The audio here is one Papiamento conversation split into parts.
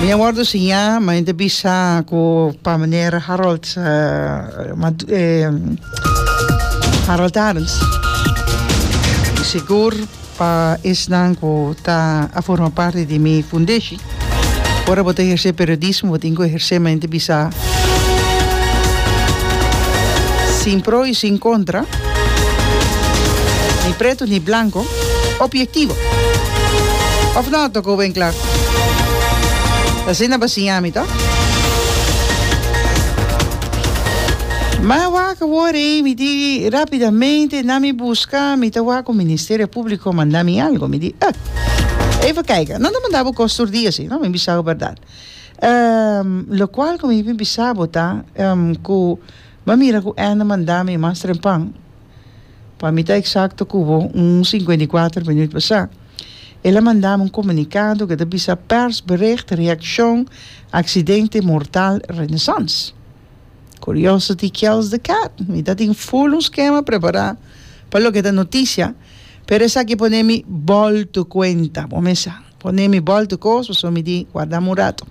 Mi a wordo siñá, ma mi ta bisa ku pa meneer Harold Harold Arends. I sigur pa esnan ku ta a forma parti di mi fundeshi. Ora bo ta ehersé periodismo bo tin ku ehersé ma mi ta bisa sin pro i sin kontra, ni pretu ni blanko. opiektivo. Òf nò? Tòk hopi en kla. Asina bo a siña mi, tò? Mi a wak wòrdu ei, mi di rapidamente na mi buska, mi ta wak ku Ministerio Públiko manda mi algu. Mi di, Ep, even kaika, nan ta manda bo kos tur dia si no? Mi bisa bo bèrdat. Lokual ku mi bin bisa bo ta ku mi a mira ku N manda mi mas trempan. Pa mi ta eksakto ku bo, un sinkuenta i kuater minuut pasá, el a manda mi un komunikado ku ta bisa Persbericht Reakshon Aksidente Mortal Renaissance. Curiosity kills the cat. Mi ta tin ful un skema prepará pa loke ta notisia, pero esaki a pone mi bòltu kuenta, bo mes sa. Pone mi bòltu kos, pasobra mi di warda mi un ratu.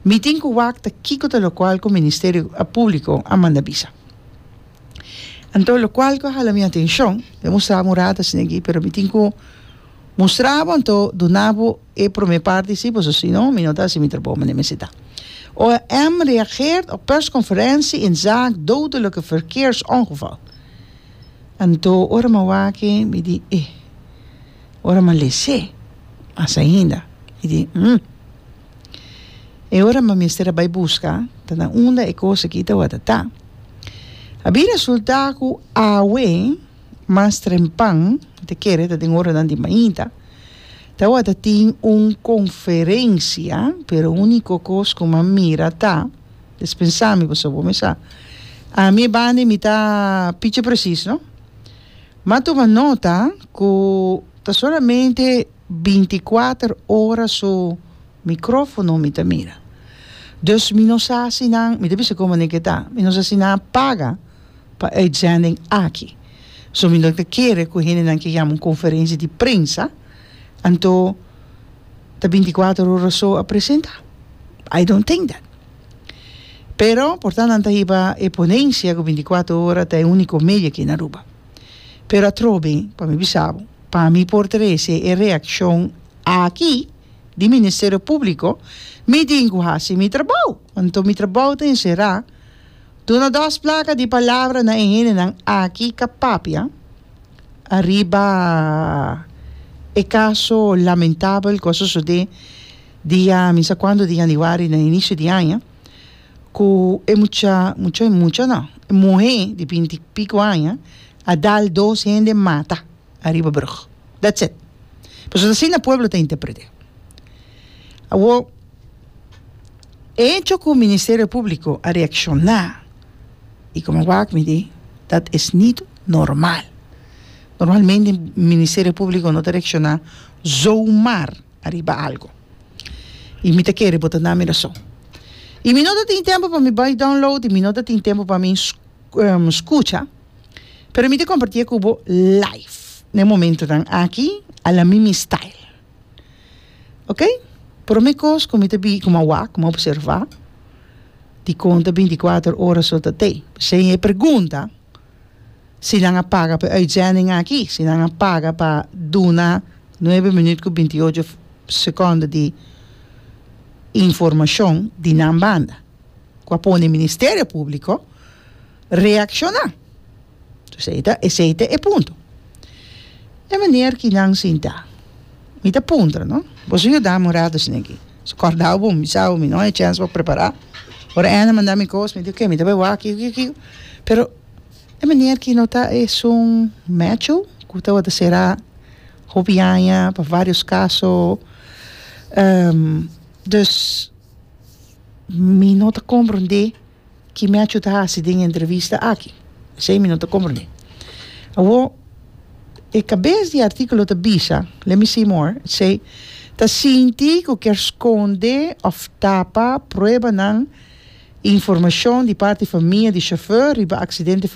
Mi tin ku wakta kiko ta lokual ku Ministerio Públiko a manda bisa. Anto locual cu a hala mi atencion, mi a mustra bo un rato asinaguí, pero mi tin cu mustra bo anto duna bo e prome parti si, pasobra si no mi no ta haci mi trabou manera mi necesita. OM reageert op persconferentie in zaak dodelijke verkeersongeval. Anto ora mi a wak-e mi di eh, ora mi a lese mas ainda mi di hmm. E ora mi a mester a bai busca, ta na unda e cos aki ta wata ta. A bin resulta cu awe mas trempan, ta kere ta den oranan di mainta, ta wata tin un conferencia, pero unico cos cu mi a mira ta, es pensa mi pasobra bo mi sa, ami e bandi mi ta pichi precis no, mi a tuma nota cu ta solamente. binticuater ora su microfono mi ta mira. Dus mi no sa si nan, mi ta bisa como aneke ta, mi no sa si nan a paga pa e uitzending aki. So mi no ta kere cu hendenan ke yama un conferentie di prensa, anto ta binticuater ora so a presenta. I don't think that. Pero por ta nan ta hiba e ponencia cu binticuater ora ta e unico medio aki na Aruba. Pero atrobe, pa mi bisa bo, pa mi por trese e reaccion aki di Ministerio Publico, mi tin cu haci mi trabao. Anto mi trabao ta encera duna dos placa di palabra na e hendenan aki ca papia ariba e caso lamentabel cu a sosode dia mi sa cuando di Januari na inicio di aña. Ku e mucha, mucha i mucha no, e muhé di binti i piko aña a dal dos hende mata ariba brug. That's it. Pasobra asina pueblo ta interpret'é. Awo, e hecho ku Ministerio Públiko a reakshoná i komo a wak mi di dat es nit normal. Normalmente Ministerio Públiko no ta reakshoná zomaar. ariba algu. I mi ta kere bo ta na mi rason. I mi no ta tin tempu pa mi bai download i mi no ta tin tempu pa mi skucha, pero mi ta kompartié ku bo live na e momentunan aki a la mi mi style. Ok, prome kos ku mi ta ku mi a wak, ku mi a opservá, dikon ta binti kuater ora so ta te. P'esei e pregunta. si nan a paga pa e uitzending aki, si nan a paga pa duna nuebe minuut ku binti ocho sekondo di informashon di nan banda ku a pone Ministerio Públiko reakshoná. Esei ta esei ta e punto. E maner ki nan sintá. Mi ta puntra no, bo su yuda mi un rato asina aki? Su kordaba bo mi bisa bo mi no hay chèns pa prepara? Ora Ann a manda mi kos mi di okay mi ta bai wak kiko kiko kiko pero e manier ki no ta esun mècho ku tabata sera hopi aña pa varios kaso dus mi no ta komprende. ki Mecho ta hasi den e entrevista aki. Esei mi no ta komprendé. Awo, e kabes di e artíkulo ta bisa, let me see more, it say, ta sinti ku kier skonde òf tapa pruebanan i informashon di parti famia di shofèr riba aksidente.